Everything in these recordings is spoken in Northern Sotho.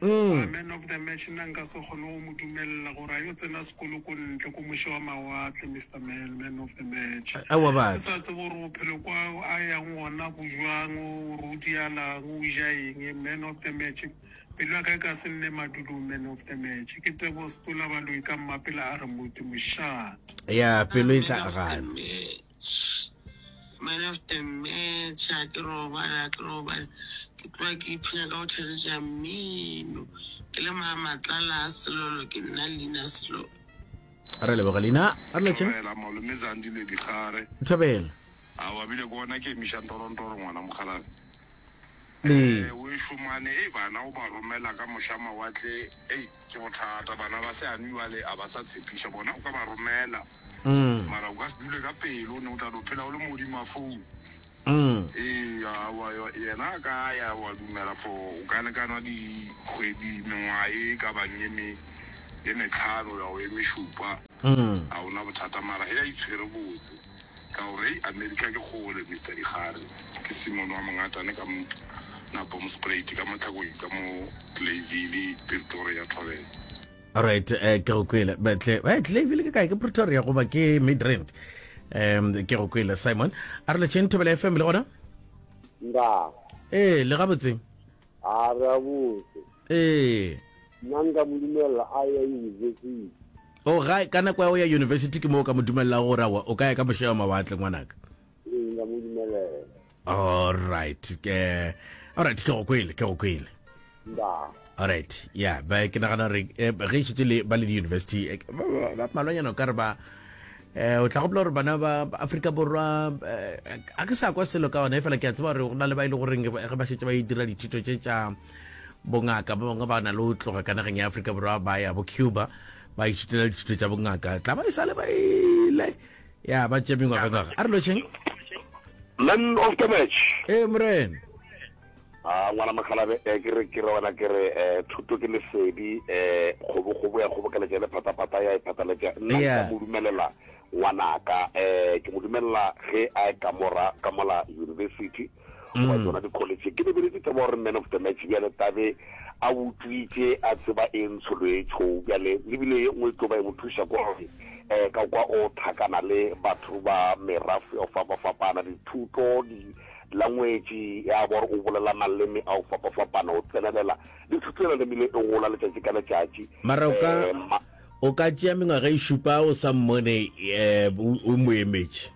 Umm. Man of the match nna nka se kgone go mo dumelela gore a yo tsena sekolo ko ntle ko moše wa mawatle Mister Mel man of the match. Aowa batho. Ke sa tsebe gore bophelo kwa a yang gona go jwang gore o dialang o ja eng man of the match pelo ya ka e ka se nne madulong man of the match ke Teboho Setsola Baloyi ka mmapela a re moti mošate. Yeah pelo e tla gana. Malefte Mme tjhe a ke robale a ke robale ke tloga ke iphina ka go theletša mmino ke le maamatlala a selolo ke nna Lina Selolo. Re leboge Lina re letše. Thobela malome Zandile Digare. Thobela. Aowa bile ke gona ke emiša ntorontoro ngwana mokgalabje. Ee. Eh o ešo mane hei bana o ba romela ka mohla mawatle ei ke bothata bana ba se anwi bale a ba sa tshepiša bona o ka ba romela mara o ka se dule ka pelo o ne o tla do phela o le modima phone ee awa yena a ka ya wa dumela for o ka lekanwa dikgwedi mengwaga e ka bang e me e metlhano ya o e mešupa a o na bothata mara hei a itshwere botse ka gore hei America ke kgole Mister Dikgare ke Simon wa Mongatane ka mo na Boomsprate ka mo Tlhakoing ka mo Clayville Pretoria Thobela Alright, eh, ke go kwele betle eh, Clayville ke kae ke Pretoria goba ke Midrand um ke go kwele Simon a re letšheng thobela fm le gona nda ee le gabotseng A re a botse. Ee. Nna nka mo dumelela a ya yunibesithi. O ga ka nako ya go ya yunibesithi ke moo ka mo dumelelago gore awa o ka ya ka mošewa mawatle ngwanaka. Ee, nka mo dumelela. Alright, ke alright ke go kwele, ke go kwele. Ba. Alright, yeah, ba ke nagana gore eh, ge e šetse le ba le di-university eh, ba- ba- ba- malwanyana o ka re ba eh o tla gopola gore bana ba Afrika Borwa eh, a ke sa kwa selo ka ona e fela ke a tseba gore go na le ba ile e goreng ge ba šetse ba e dira dithuto tše tša bongaka ba bangwe ba na le o tloga ka nageng ya aforika borwa ba ya bo cuba ba ithutela dithuto tša bongaka tla ba e sale ba ile ya ba tše mengwagangwaga a re lošeng man of the match ee morena A ngwana mokgalabje, eh, ke re, ke re wena, ke re, eh, thuto ke lesedi, eh, kgobokgobo ya kgobokeletša le phataphata ya e phataletša. Nna nka Yeah. mo dumelela ngwanaka, eh, ke mo dumelela ge a e kamora ka mola university, goba tšona dikholetšhe. Ke lebeletše taba gore man of the match bjale tabe a utswitše, a tseba e ntsho lo e tšho. Bjale le bile ye nngwe e tlo ba e mo thuša ko gore, eh, ka kwa o thakana le batho ba merafe o fapafapana, dithuto, di, Langwetši ya bor o bolela maleme a go fapafapana, o tsenelela le thuto ya laleme le e gola letšatši ka letšatši. Mara o ka, ma. O ka tšea mengwaga e šupa o sa mmone eh, o, o mo emetše.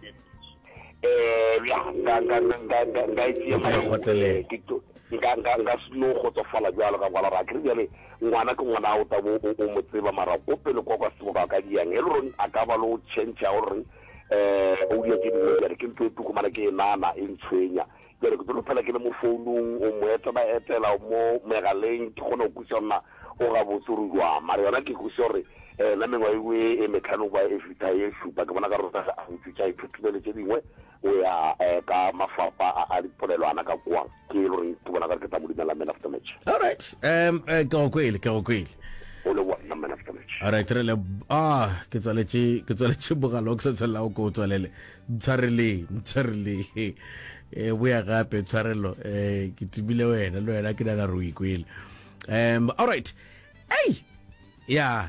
Eh, ya, nka, nka, nka, nka, nka, nka e tšea O ka e mara o, eh, kgotlelela. ke to, nka, nka, nka se no kgotsofala bjalo ka kwala gore a ke re bjale ngwana ke ngwana o tla bo o, o mo tseba mara ko pele kwa kwa sebaka ka diang Elrond a ka ba le o tšhentšha o reng Eupša ke bile bjale ke ntlo e tuku, mara ke e nana, e ntshwenya. Bjale ke tlo phela ke le mo founung, o mo etela etela, o mo megaleng, ke kgona go kwešiša gore na o gabotse gore o jwang. Mara yona ke kwešiša gore na mengwaga e ngwe e metlhano go ba e fihla e šupa, ke bona ekare o sa a ntšwetša, a ithuthumele tše dingwe, o ya ka mafapa a dipolelwana ka kua. Ke e le gore ke bona gare ke tla mo dumela man of the match. Alright. Um, eh, ke go kwele, ke go kwele. O le bona man of the match. Alright, re le, ah, ke tswaletše, ke tswaletše mogala o ke sa tshwanela o ke o tswalele. Ntshwareleng, ntshwareleng. Eh, boya gape, tshwarelo. Eh, ke timile wena, le wena ke nana re o ikwele. Um, alright. Ei! Yeah.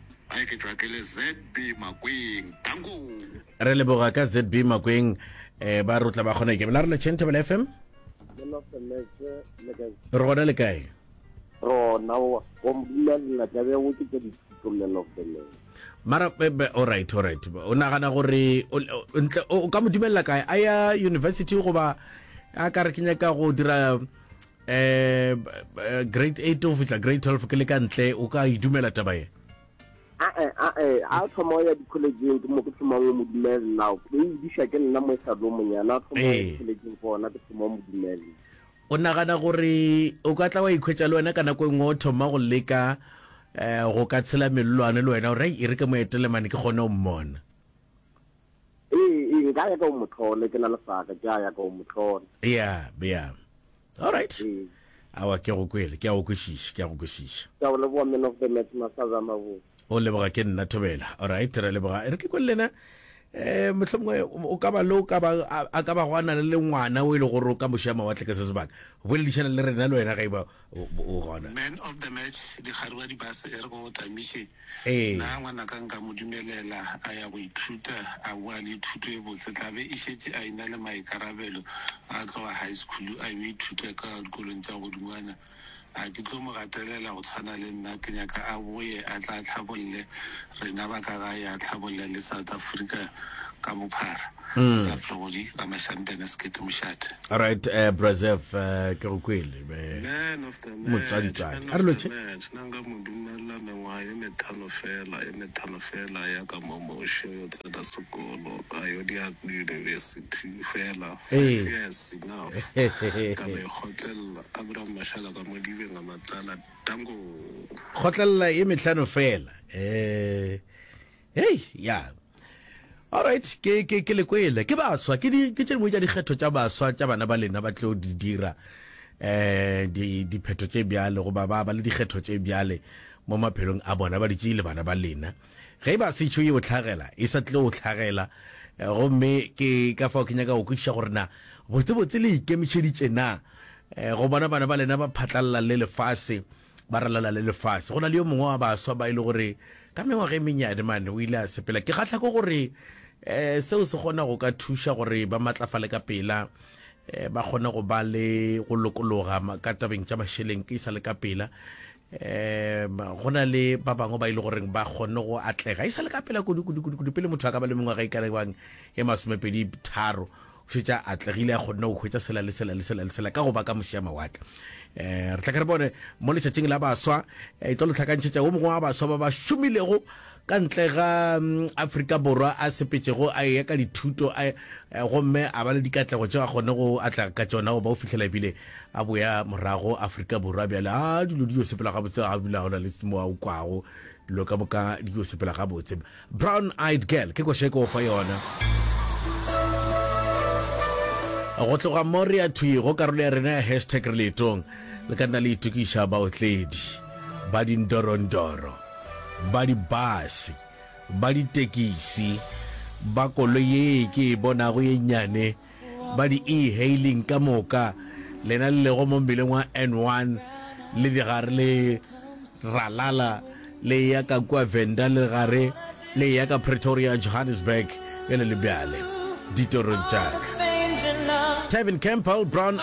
Ge ke tšwa ke le ZB Makweng. Tankong. Re leboga ka ZB Makweng eh ba rutla ba kgone ke bela re le Chentable FM. Re gona le kae? Rona wa go mbula la ka be go ke tsa dipolelo fela. mara bebe all right all right o nagana gore ntle o ka mo dumelela kae a ya university goba a ka re ke nyaka go dira eh grade 8 o fitla grade 12 ke le ka ntle o ka idumela taba ye a eh, a eh, a thoma ya di college ke mo ke thoma mo modumele now ke e disha ke nna mo e sa do monyana a thoma ya di college go ona ke thoma mo modumele o nagana gore o ka tla wa ikhwetsa le wena ka nako e nngwe o thoma go leka um go ka tshela melelwane le wena gore e re ke moetelemane ke kgone o mmona Ee, ee, nka ya ka o motlhole, ke na le saka, ke a ya ka o motlhole. Bea, bea. All right. Ee. Awa, ke a go kwele, ke a go kwešiša, ke a go kwešiša. Ke a go leboga, Man of the Match, Masaza a mabotse. O leboga ke nna, Thobela. All right, re a leboga. E re ke kwe le lena, um mohlomongwe o o ka ba le o ka ba, a, a ka bago a na le le ngwana o e le gore o ka mo šea mawatle ka se sebaka. Boledišana le rena le wena ga e ba Man of the match dikgari wa dibase e re go tamiše na ngwana ka nka mo dumelela a ya go ithuta a boa le thuto e botse tla be e šetše a ina le maikarabelo a tloga high school a yo ithuta ka dikolong tša godingwana a ke tlo mo gatelela go tshwana le nna ke nyaka a boye a tla tlhabolle rena ba ka gae a tlhabolla le South Africa ka bophara. Mm. Sef Legodi ka Mashampene Sekete Mošate. Alright, uh, eh, Brazef, uh, eh, ke go kwele be motsaditsadi a re loche nna nka mo dumella mengwaga ye methano fela ye methano fela ya ka mo moše yo tsena sekolo a yo di university fela five years enough ka mekgotlelela abraham mashala ka mo dibeng a matlala Tango. Kgotlelela ye mehlano fela. Eh. Hey, ya. Alright, ke ke ke le kwele. Ke baswa, ke di ke tše dingwe tša dikgetho tša baswa tša bana ba lena ba tlo di dira eh di diphetho tše bjale go ba ba ba le dikgetho tše bjale mo maphelong a bona ba ditše le bana ba lena. Ge e ba setšo yeo hlagela, e sa tlile go hlagela. Gomme ke ka fao ke nyaka go kwešiša gore na botsebotse le ikemišeditše na go bona bana ba lena ba phatlalala le lefase, ba ralala le lefase. Go na le yo mongwe wa baswa ba e le gore ka mengwaga e mennyane mane o ile a sepela. Ke kgahla ke gore seo se kgona go ka thuša gore ba matlafale ka pela, ba kgone go ba le go lokologa ka tabeng tša mašeleng e sa le ka pela. um go na le ba bangwe ba ile e goreng ba kgonne go atlega e sa le ka pela kudu-kudu-kudu pele motho a ka ba le mengwaga e kalebang e masomepedi tharo o šetša atlegile a kgonne go hwetša sela le sela le sela le sela ka go ba ka mošea mawatle um re tla ka re bone mo letšatšing la baswa e tlo lo tlhakantšhetša wo mongwe wa baswa ba ba šomilego ka ntle ga Afrika Borwa a sepetšego a eya ka dithuto gomme a ba le dikatlego tšeo a kgone go atlega ka tšona go ba o fihlela ebile a boya morago Afrika Borwa bjale a dilo di yo sepela gabotse ga bula gona le mo a o kwago dilo ka moka di yo sepela gabotse Brown Eyed Girl ke koše ko fa yona go tloga mo re ya thwi go karolo ya rena ya hashtag re leetong le ka nna le itokiša baotledi ba dindorondoro Ba dibase, ba ditekisi, ba koloi ye ke e bonago ye nnyane, ba di-e-hailing ka moka, lena le lego mo mmileng wa N1 le digare le ralala le eya ka kua Venda le gare le eya ka Pretoria, Johannesburg, bjale le bjale, ditorong tša ka. Tavin Campbell, Brown